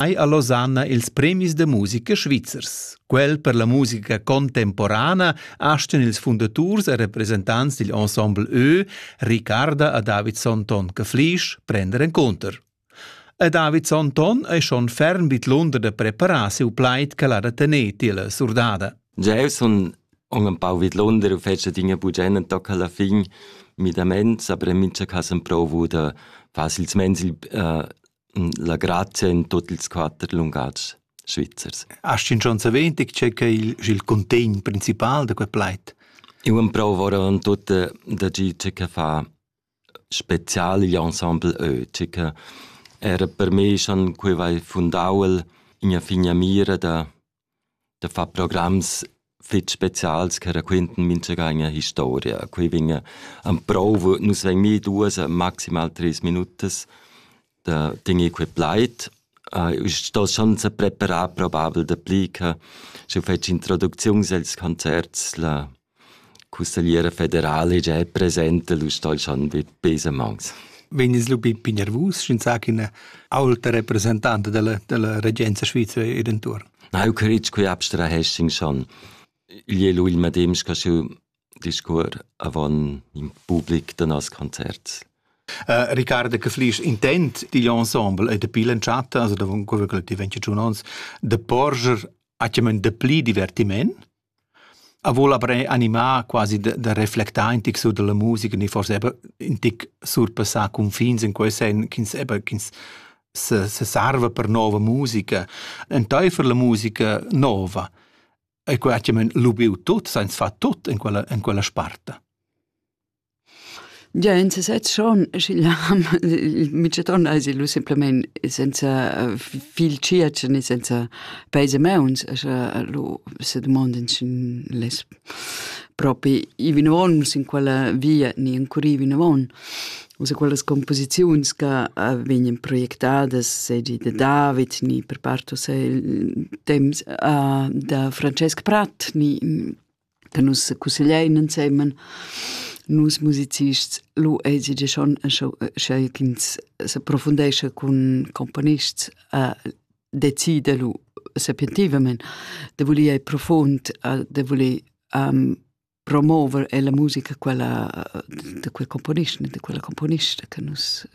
Ei ha Losanna ils premis da musica svizzers. Quel per la musica contemporana astan ils fundaturs e representants digl ensemble Ö, Ricarda a David Sonton che Flisch, prender encunter. A David Sonton è schon ferm vid l'under da preparar siu plaid che l'ha da tener tier la surdada. Jeu sun aunc empau vidlunder u fetsch adina buca ennatoc alla fin midaments, aber en mincha cas emprovu da far silsumeins il la grazia in tuot ils quatter lungatgs svizzers. Hast du schon erwähnt, ich checke il, il contegn principal da quel plaid? Eu emprovo ora in tutt da gi che fa spezial gli ensemble eu, che era per me schon quei vai fundau in a figna mira da da far programs fitg specials che raquintan mintgagn historia. Quei vegn en prova, nus vegn mi duas, maximal treis minutas da tener quei plaid. Uh, sto schon se preparar probabel dapli che sche fetsch introducziuns els concerts la Cussegliera federala già è presenta l'ustal Schanwit Besemans. Vegnis lu bin nervus, sch'ins sa ch'ina aulta representante della, della regenza svizera ir intorno? Nau critg qui abstrahessin schon. Igl è lui il medem che schiu discur avon in public da nos concert. Uh, Riccardo che flis intent digl ensemble e de pilen chat, also da quello che ti venci giù ons, de porger a de pli divertiment A voul aber animar quasi da da reflectar in tic sur da la musica ni forsa eir ün tic surpassar cunfins in quel sen ch'ins eber ch'ins se se sarva per nouva musica. Entaifer la musica nouva e quai chi'm han lubieu tut, sainz far tut in quella in quella sparta. Gia in sesez schon, sch'igl ham il mitschaton ais il simplamaing senza fil tschiatsch ne senza peis e mauns, scha lu se dumondin sch'ün less propi i vinavon u sin quella via ni encurì vinavon. U se quellas cumposiziuns ca vegnan projectadas seigi da David ni per part uss il temps da Francesc Pratt ni da nus cussegliein ensemen nus musicists lu eisi gia schon scho sch'ei ch'ins s'approfundescha cun componists a decider lu sapientivamein da voler ir profund da voler promover ella musica quella da quel componist ne da quella componista che nus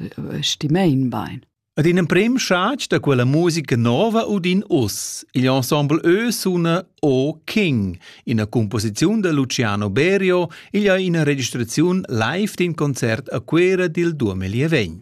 stimein bein. Ad in emprem schatg da quella musica nova udin uss. Il ensemble Ö suna O King, ina composiziun da Luciano Berio, igl ha ina registraziun live d'in concert a Cuera dil 2020.